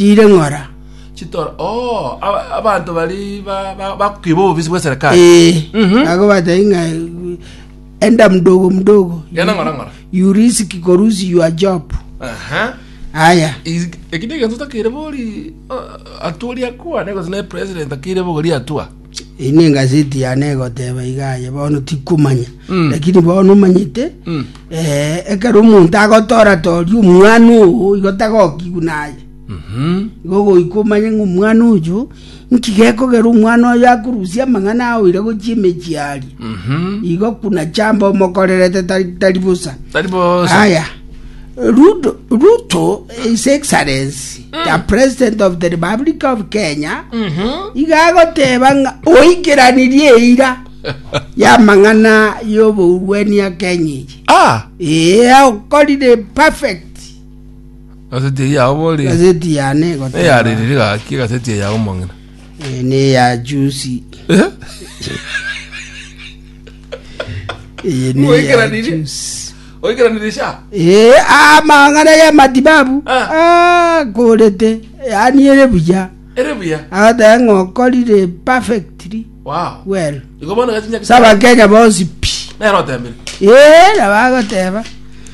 ire ng'ora. Chitoro. Oh, aba- abanto bari ba- ba- bakiba obobisi bw'eserikali. Eh, Mhm. nago batai ng'a enda mdogo mdogo Genda ng'ora ng'ora. you risk korusi your job Aha. aya Is- Ekinde egento takire bori uh, atua ori akwane gose ne president akire bogori atua. Eye nengaseti yane egoteba iga aye bono tikomanya Mm. lakini bono omanyete Mm. eh, ekero omonto agotora toria omwana ogo igo tagokigwa naye Mhm. igo goika omanye ng'a omwana oyo nki gekogera omwana oyo akorusia amang'ana aoire gochia emechie aria Mhm. igo kuna chamba omokorerete tari tari bosa Tari bosa. aya ruto ruto his excellence ya president of the republic of kenya iga agoteba ng'a oikeranirie eira y'amang'ana y'obourwani ya kenya eyi Ah, ee okorire perfect gaseti eye yao bori. gazeti yane egoteba Eyaririre gaki gaseti eye yao mong'ina. eh, neya jusi Eh? Eye neya Oikeranirie? juice. Oikeranirie sha? Ee, aa amang'ana y'amatibabu Ah. akorete, yaani ere buya. Ere buya. Agoteba ng'a okorire perfectly Wow. well. Igo bono gachinya Ase Abakenya bonsi pi. Nero otebire. Ee, nabo agoteba.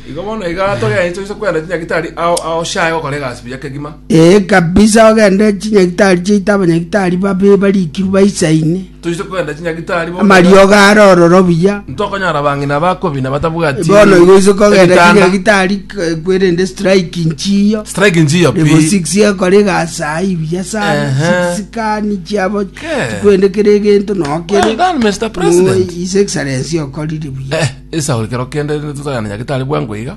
Igo bono iga togeanche ase kwenda chinyagitari ao ao sha egokora egasi buya kegima. Ee kabisa ogende chinyagitari chiaito abanyagitari babe barikirwe baisaine. Toise kogenda chinyagitari bono. amariogo are ororo buya Ntokonyara abang'ina bakobi na batabwati. bono igo ise kogenda ebitanda. chinyagitari k- kwerende strike nchiyo Strike njiyo pi. Level 6 ekore gasai buya sana Ehe. sikani chiabo Ke. chikwende kere egento Well nokere done, Mr. President. His Excellency okorire buya Eh, esauri kero kende tutagana nyagitari bwango iga.